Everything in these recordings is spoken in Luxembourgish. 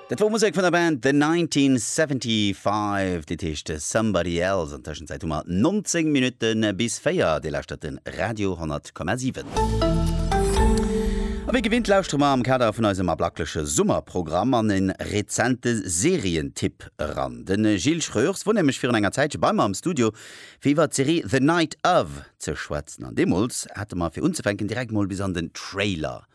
Dat wor Musek vun der Band The 1975, dit heescht Somebody Else. An Tëschenzäit hu mer 19 Minutte bis 4. Dir lauschtert de Radio 10,7. A wéi gewinnt lauschtere mer am Kader vun eisem ablackleche Summerprogramm an e rezente Serientipp eran. De Gilles Schreurs wor nämlech virun enger Zäitche bei mer am Studio, fir iwwer d'Serie The Night Of ze schwätzen. An deemools hate mer fir unzefänken direkt mol bis an den Trailer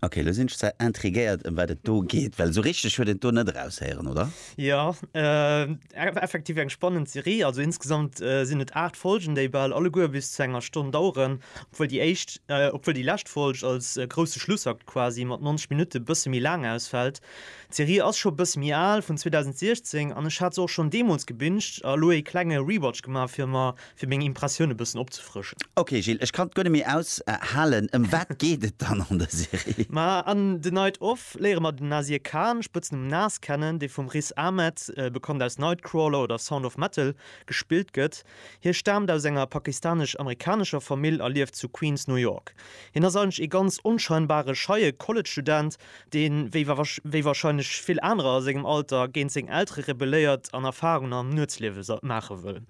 Ok, elo sinn ech zwar intriguéiert ëm wat et do geet, well esou richteg huet een d'Do net eraushéieren, oder? Jo, effektiv eng spannend Serie. Also insgesamt sinn et 8 Folgen, déi bal alleguer bis zu enger Stonn daueren, obwuel déi éischt, obwuel déi lescht Folg als grousse Schlussakt quasi mat 90 Minutte bësse méi laang ausfält. D'Serie ass scho e bësse méi al, vun 2016, an ech hat se och schonn deemools gebinged a elo ee klenge Rewatch gemaach fir mer fir meng Impressioun e bëssen opzefrëschen. Ok Gilles, ech kann et guer net méi aus halen, ëm wat geet et dann an der Serie? Ma an The Night Of léiere mer den Nasir Khan, Spëtznumm Nas, kennen, dee vum Riz Ahmed, bekannt aus Nightcrawler oder Sound of Metal, gespillt gëtt. Hie staamt aus enger pakistanesch-amerikanescher Famill a lieft zu Queens, New York. Hien ass eigentlech ee ganz onscheinbare, scheie College-Student, dee wéi wéi warscheinlech vill anerer a sengem Alter géint seng Eltere rebelléiert an Erfarungen am Nuetsliewe maache wëll.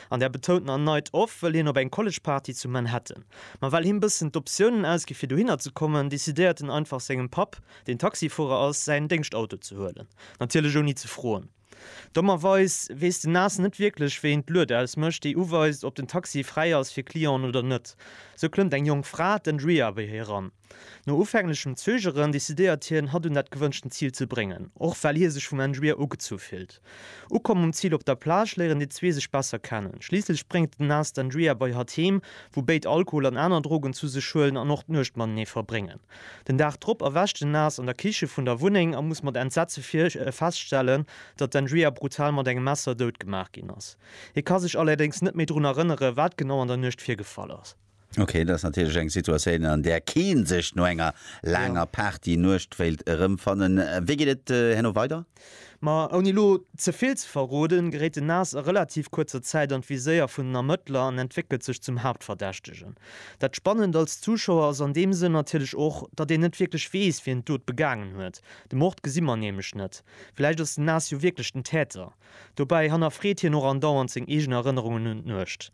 An der betounten A Night Off wëll hien op eng College-Party zu Manhattan. Ma well him bëssen d'Optiounen ausgi fir dohinner ze kommen, decidéiert en einfach sengem Papp, deen Taxifuerer ass, säin Déngschtauto ze huelen. Natierlech ouni ze froen. Dommerweis weess den Nas net wierklech wéi een d'Lued ausmécht, déi uweist ob den Taxi fräi ass fir Clienten oder net. Sou klëmmt eng jonk Fra, d'Andrea, bei hie eran. No ufänglechem Zögeren decidéiert hien, hatt un dat gewënschten Zil ze bréngen, och well hie sech vum Engibier ugezu fillt. Ukomm um Zil op der Plage léieren déi zwee sech besser kennen. Schliisslech bréngt den Nas d'Engibier bei hatt heem, wou béid Alkohol an aner Drogen zu sech huelen an och d'Nuecht matenee verbréngen. Den Dag drop erwächt den Nas an der Kiche vun der Wunneng a muss mat Entsetze feststellen, datt d'Engibier brutal mat engem Messer dout gemaach ginn ass. Hie ka sech allerdéngs net méi drun erënneren, wat genau an der Nuecht virgefall ass. Okay, dat ass natierlech eng Situatioun, an där kee sech no enger laanger Party-Nuecht wéilt erëmfannen. Wéi geet et herno weider? Ma ouni elo ze vill ze verroden, geréit den Nas a relativ kuerzer Zäit an d'Viséier vun den Ermëttler an entwéckelt sech zum Haaptverdächtegen. Dat Spannend als Zuschauer ass an deem Sënn natierlech och, datt een net wierklech weess, wien d'Dot begaangen huet. De Mord gesi mer nämlech net. Vläicht ass den Nas jo wierklech den Täter? Dobäi hannerfreet hien och andauernd seng eegen Erënnerungen un d'Nuecht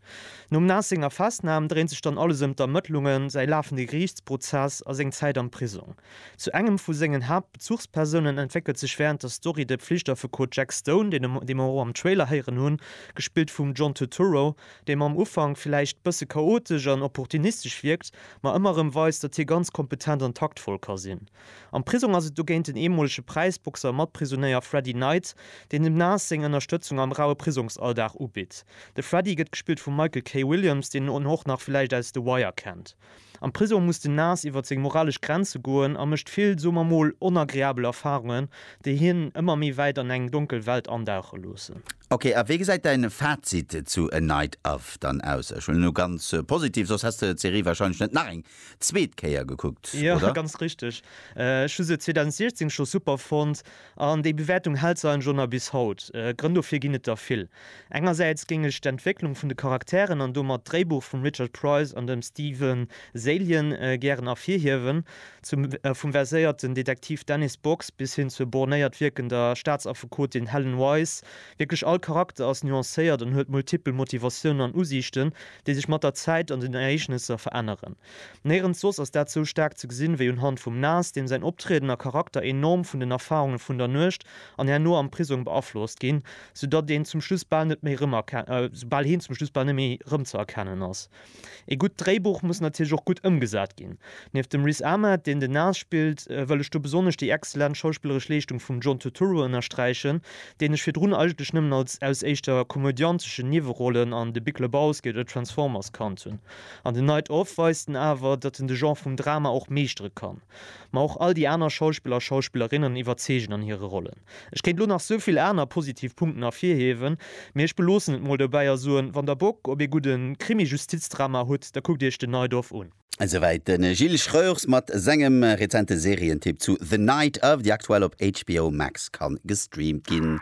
nom Nas senger Festnam. Dréint sech dann alles ëm d'Ermëttlungen, säi lafende Geriichtsprozess a seng Zäit am Prisong. Zu engem vu sengen Haaptbezuchspersounen entwéckelt sech wärend der Story de Pflichtaffekot Jack Stone, dee mer och am Trailer héieren hunn, gespillt vum John Turturro, dee mam Ufank villäicht bësse chaotesch an opportunistesch wierkt, ma ëmmer erëm weist, datt hie ganz kompetent an taktvoll ka sinn. Am Prisong ass et dogéint den eemolege Präisboxer a Matprisonéier Freddy Knight, deen dem Nas seng Ënnerstëtzung am raue Prisongsalldag ubitt. De Freddy gëtt gespillt vum Michael K. Williams, deen en och nach villäicht aus The Wire kennt. Am Prisong muss den Nas iwwer seng moralesch Grenze goen a mécht vill, soe mer mol, onagreabel Erfarungen, déi hien ëmmer méi wäit an eng donkel Welt andauche loossen. Ok, a wéi gesäit däin Fazit zu A Night Of dann aus? Ech huelen elo ganz positiv, soss häss de d'Serie wahrscheinlech net nach eng zweet Kéier gekuckt, Jo, oder? ganz richteg. Ech hu se 2016 scho super fonnt, an déi Bewäertung hält se eigentlech och nach bis haut. Grënn dofir ginn et der vill. Engersäits géing ech d'Entwécklung vun de Charakteren an domat d'Dréibuch vum Richard Price an dem Steven Zaillian gären ervirhiewen. Zum vum verséierten Detektiv Dennis Box bis hin zur bornéiert wierkender Staatsaffekotin Helen Wise, wierklech all Charakter ass nuancéiert an huet multipel Motivatiounen an Usiichten, déi sech mat der Zäit an den Ereegnesser veränneren. Néirens soss ass dat sou staark ze gesinn, wéi unhand vum Nas, deem säin Optrieden a Charakter enorm vun den Erfarunge vun der Nuecht an herno am Prisong beaflosst ginn, soudatt een zum Schluss bal net méi rëmerken, sou bal heen zum Schluss bal net méi rëmzëerkennen ass. Ee gutt Dréibuch muss natierlech och gutt ëmgesat ginn. Nieft dem Riz Ahmed, deen den Nas spillt, wëll ech do besonnesch déi exzellent schauspilleresch Leeschtung vum John Turturro ënnersträichen, deen ech virdrun eigentlech nëmmen als aus éischter komödianteschen Niewerollen an The Big Lebowski oder Transformers kannt hunn. An The Night Of weist en awer, datt en de Genre vum Drama och meeschtere kann. Ma och all déi aner Schauspiller a Schauspillerinnen iwwerzeegen an hire Rollen. Ech kéint lo nach souvill aner positiv Punkten ervirhiewen, mee ech beloossen et mol dobäi a soen, wann der Bock op ee gudde Krimi-Justizdrama hutt, da kuckt iech den Najdorf un. Esouwäit de Gilles Schreurs mat sengem rezente Serientipp zu The Night of, déi aktuell op HBO Max ka gestreamt ginn.